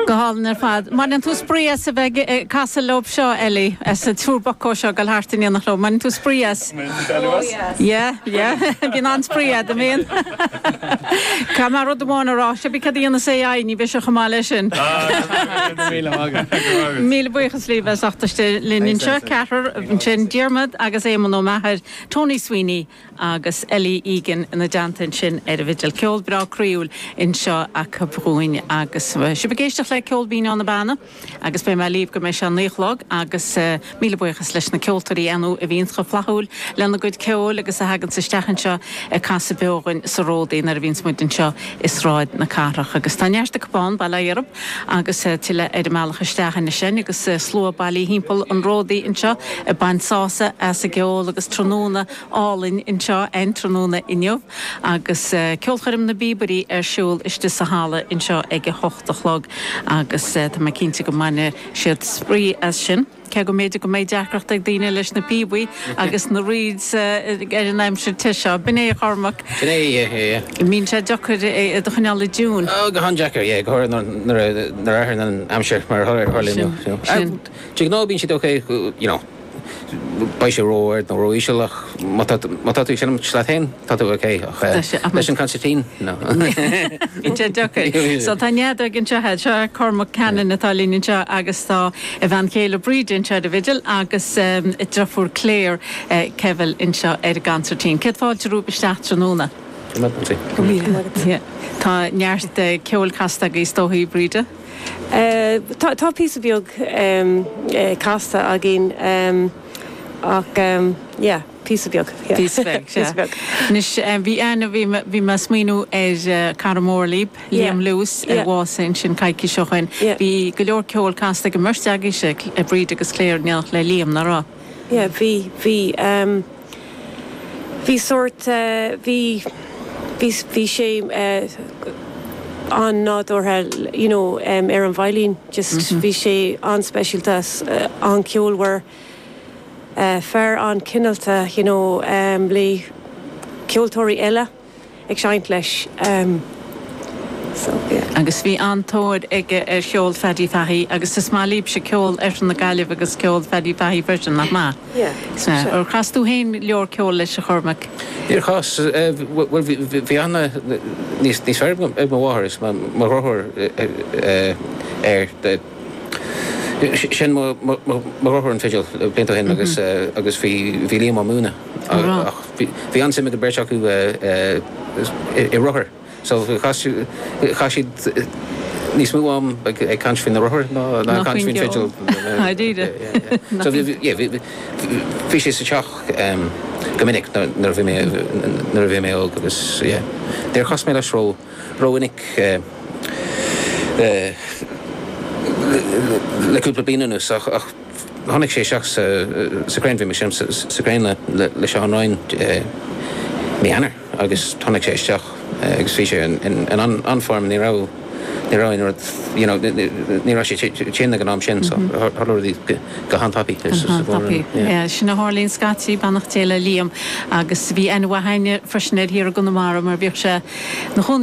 Go hálainn ar fad. An mbaineann tú spraoi as a bheith ag casadh leob seo Ellie, is an triúr buckos seo ag dul thart in éineacht leob, mbaineann tú spraoi as? Mbaineann tú spraoi as? Ó yes. Yeah, yeah, bíonn an-spraoi agat, an mbíonn? Caithfidh mé rud amháin a rá, is pé céard a dhéanas AI, ní bheidh sé chomh maith leis sin. Go raibh míle maith agat. Go raibh maith agat. Míle buíochas, libh, as ucht teacht isteach linn Thanks, anseo. thanks, thanks. Ceathrar, sin Diarmaid agus Éamonn Ó Meachair, Tony Sweeney, agus Ellie Egan ina dteannta ansin ar an bhfidil. Ceol breá croíúil anseo acu dhúinn agus sibh ag éisteacht le Ceol Binn ó na Beanna agus beidh mé libh go mbeidh sé a naoi a chlog agus míle buíochas leis na ceoltóirí ar ndóigh a bhíonns chomh flaithiúil lena gcuid ceoil agus a thaganns isteach anseo ag casadh beo dhúinn sa ródaí nuair a bhíonns muid anseo i Sráid na Cathrach agus tá neart acu ann, bail ó Dhia oraibh. Agus tuilleadh ar an mbealach isteach anois linn agus slua bailithe thimpeall an ródaí anseo ag baint sásamh as an gceol agus tráthnóna álainn anseo an tráthnóna inniu agus Ceolchoirm na bPíobairí ar siúl istigh sa halla anseo ag a hocht a chlog agus tá mé cinnte go mbainfidh siad spraoi as sin. Cé go mb'fhéidir go mbeidh deacracht ag daoine leis na píobaí agus na reeds ar an aimsir te seo, b'in é, a Chormaic. Sin é, yeah. Bíonn sé deacair é a choinneáil i dtiúin. Ó, go han-deacair, yeah, go háirithe nuair a athraíonn an aimsir mar a tharla inniu. Sin, sin. De ghnáth bíonn siad ok, you know, beidh sé ró-ard nó ró-íseal ach má tá, má tá tú ag seinm leat féin, Tá tú ok. Och. Tá sé, ach. Leis an concertina? No. Bhí sé deacair. So tá nead agaibh anseo a'd. Seo Cormac Cannon atá linn anseo agus tá a bhean chéile Breda anseo ar an bhfidil agus a driofúr Claire, Keville, anseo ar an gconcertina. Céad fáilte romhaibh isteach tráthnóna. Go raibh maith agat. Go raibh maith agat. Yeah. Tá neart ceoil casta agaibh is dóigh, Breda? Tá, tá píosa beag casta againn ach yeah. Píosa beag, yeah. Píosa beag, sea. Píosa beag. Anois, eh, bhí ana, bhí mé, bhí mé ag smaoiniú ar eh, cara mór libh, Yeah. Liam Lewis, a Yeah. bhásaigh ansin coicís ó shin. Yeah. Bhí go leor ceoil casta ag an mbeirt agaibhse, Cl- eh, Breda agus Claire, in éindí le Liam, nach raibh? Yeah, bhí, bhí, em, bhí sórt, eh, bhí, bhí, s- bhí sé eh, an-nádúrtha, you know, em, ar an veidhlín, just bhí sé an-speisialta, s- eh, an-cheolmhar. fear an-chineálta, you know, le ceoltóirí eile ag seinnt leis, so yeah. Agus bhí an-tóir aige ar cheol Phaddy Fahey agus is maith libhse ceol Oirthear na Gaillimhe agus ceol Phaddy Fahey freisin, nach maith? Yeah, sure. Ar chas tú féin go leor ceoil leis, a Chormaic? Níor chas, bhuel, bhí aithne níos fearr ag mo mháthair is mo dhriotháir air. Sheinn mo dheartháir an fidil blianta ó shin agus bhí Liam á múineadh. Ach bhí an-suim ag an bheirt acu i rothair so chaith siad níos mó am ag caint faoi na rothair ná ag caint faoin bhfidil. Dáiríre? So bhí sé sa teach go minic nuair a bhí mé óg agus níor chas mé leis ró. Rómhinic, le cúpla bliain anuas, ach tháinig sé isteach sa Crane, bhí mé ag seinm sa Crane le Seán Ryan mí Eanáir agus tháinig sé isteach agus bhí sé in an-form, ní raibh aon rud, you know, ní raibh sé tinn ag an am sin so tharla rudaí go han-tapaidh. Go han-tapaidh, yeah, sin a tharlaíonn scaití, beannacht Dé le Liam agus bhí aithne mhaith aige freisin ar cheantar Chonamara mar bhíodh sé 'na chónaí